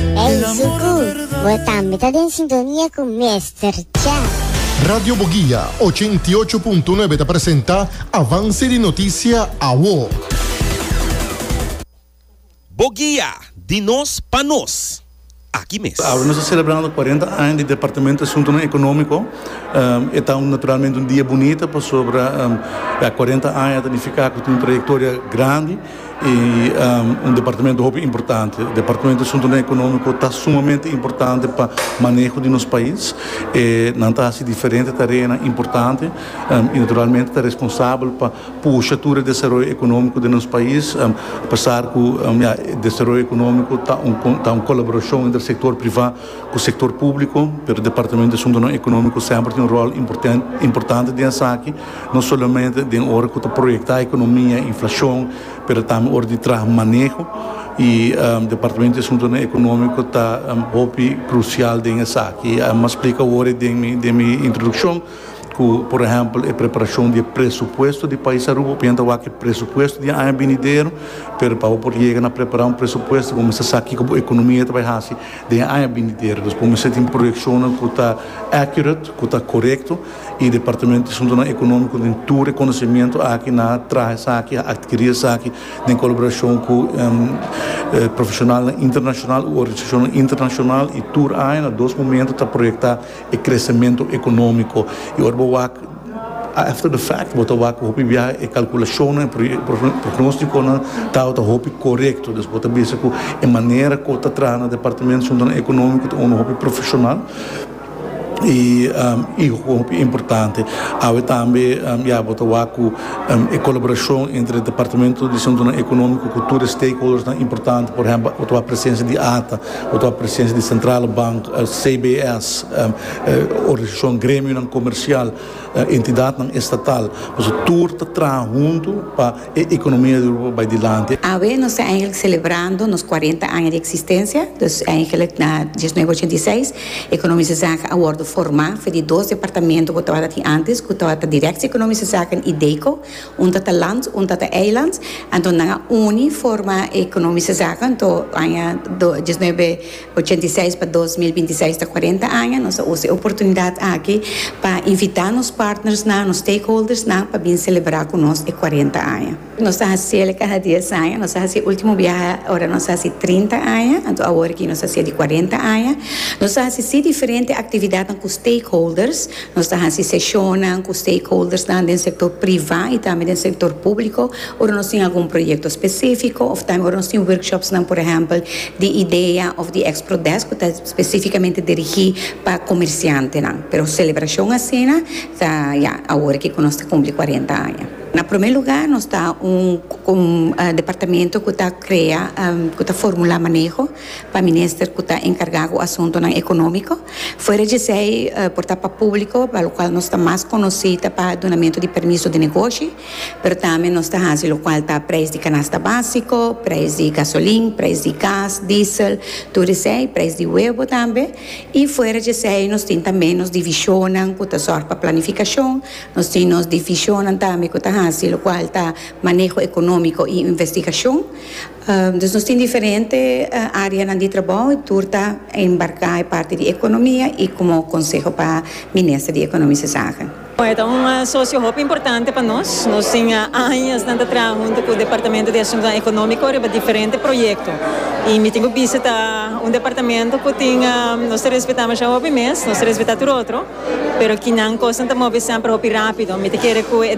Ey Zuku, bo tambe ta den sintonia cu Mester Chef. Radio Boguia ochenta i ocho punto nuebe ta presenta Avance di Noticia Awo. Boguia, di nos pa nos. Aki mes. Awe nos ta celebrando cuarenta aña di Departamento di Asuntonan Economico. E ta un naturalmente un dia bunita pasobra ya cuarenta aña ta nifica cu tin un trayectoria grandi. y un departamento hopi importante departamento di asuntonan economico ta sumamente importante pa maneho di nos pais e nan ta haci diferente tareanan importante y naturalmente ta responsabel pa pusha tur e desaroyo economico den nos pais apesar cu desaroyo economico ta un colaboracion entre sector priva cu sector publico pero departamento di asuntonan economico semper tin un rol importante den esaki. no solamente den ora cu ta proyecta economia y inflacion, pero tambe ora di traha maneho y Departamento di Asuntonan Economico ta hopi crucial den esaki. M'a splica awor den mi, den mi introduccion cu por ehempel e preparacion di e presupuesto di pais Aruba, opinan ta wak e presupuesto di e aña binidero, pero pa bo por yega na prepara un presupuesto bo mester sa kico bo economia ta bay haci den e aña binidero, dus bo mester tin proyeccionnan cu ta accurate, cu ta corecto. y departamento di Asuntonan Economico den tur reconocimiento aki nan a traha esaki, a adquiri esaki den colaboracion cu profesionalnan internacional u organisacionnan internacional y tur aña na dos momento ta proyecta e crecemento economico y ora bo wak after the fact bo ta wak hopi biaha e calculacionnan y pronosticonan tabata hopi corecto dus bo ta bisa cu e manera cu ta traha na departamento di Asuntonan Economico ta unda hopi profesional. i e hopi importante awe tambe ya bo ta wak cu e colaboracion entre departamento di asuntonan economico cu tur e stakeholders nan importante por ehempel bo ta wak presencia di ata bo ta wak presencia di centrale bank cbs organisacion gremionan comercial entidadnan estatal pasobra tur ta traha hunto pa E economia di Europa bai dilanti. Awe nos ta eigenlijk celebrando nos cuarenta aña di existencia, dus eigenlijk na diesnuebe ochenta i seis Economische Zaken a wordo forma for di dos departamento cu tabata tin antes cu tabata Directie Economische Zaken y DECO, un tata Land un tata Eiland, anto nan a uni forma Economische Zaken anto aña diesnuebe ochenta i seis pa dos mil binti seis ta kuarenta aña. Nos a usa e oportunidat aki pa invitá nos partnersnan, nos stakeholdersnan pa bin selebrá ku nos e kuarenta aña. Nos ta hasiel kaha dies aña. Nos a hasi e último biaha ora nos a hasi trinta aña, anto awor aki nos a hasié di kuarenta aña. Nos a hasi sí diferente aktividatnan ku stakeholders. Nos ta hasi seshonnan ku stakeholdersnan den sektor privá i tambe den sektor públiko ora nos tin algun proyekto spesífiko òf tambe ora nos tin workshopsnan, por ehèmpel, di idea òf di Expro Desk ku ta spesífikamente dirigí pa komersiantenan. Pero selebrashon asina ta, ya, awor aki ku nos ta kumpli kuarenta aña. Na promé lugá, nos ta un departamento ku ta krea, ku ta formulá maneho. pa minister cu ta encarga cu asuntonan economico. Fuera djesei por ta pa publico, pa locual nos ta mas conoci ta pa dunamento di permiso di negoshi, pero tambe nos ta haci locual ta prijs di canasta basico, prijs di gasolin, prijs di gas, diesel, tur esei, prijs di huevo tambe. Y fuera djesei nos tin tambe nos divisionnan cu ta zorg pa planificacion, nos tin nos divisionnan tambe cu ta haci locual ta maneho economico y investigacion. Dus nos tin diferente areanan di trabou y tur ta embarca e parti di economia y como conseho pa Minister di Economische Zaken. E ta un socio hopi importante pa nos. Nos tin añasnan ta traha hunto cu Departamento di Asuntonan Economico riba diferente proyecto y mi tin cu bisita un departamento cu tin, nos ta respeta masha hopi mes, nos ta respeta tur otro, pero kinan cosnan ta mobi semper hopi rapido. Mi ta kere cu e.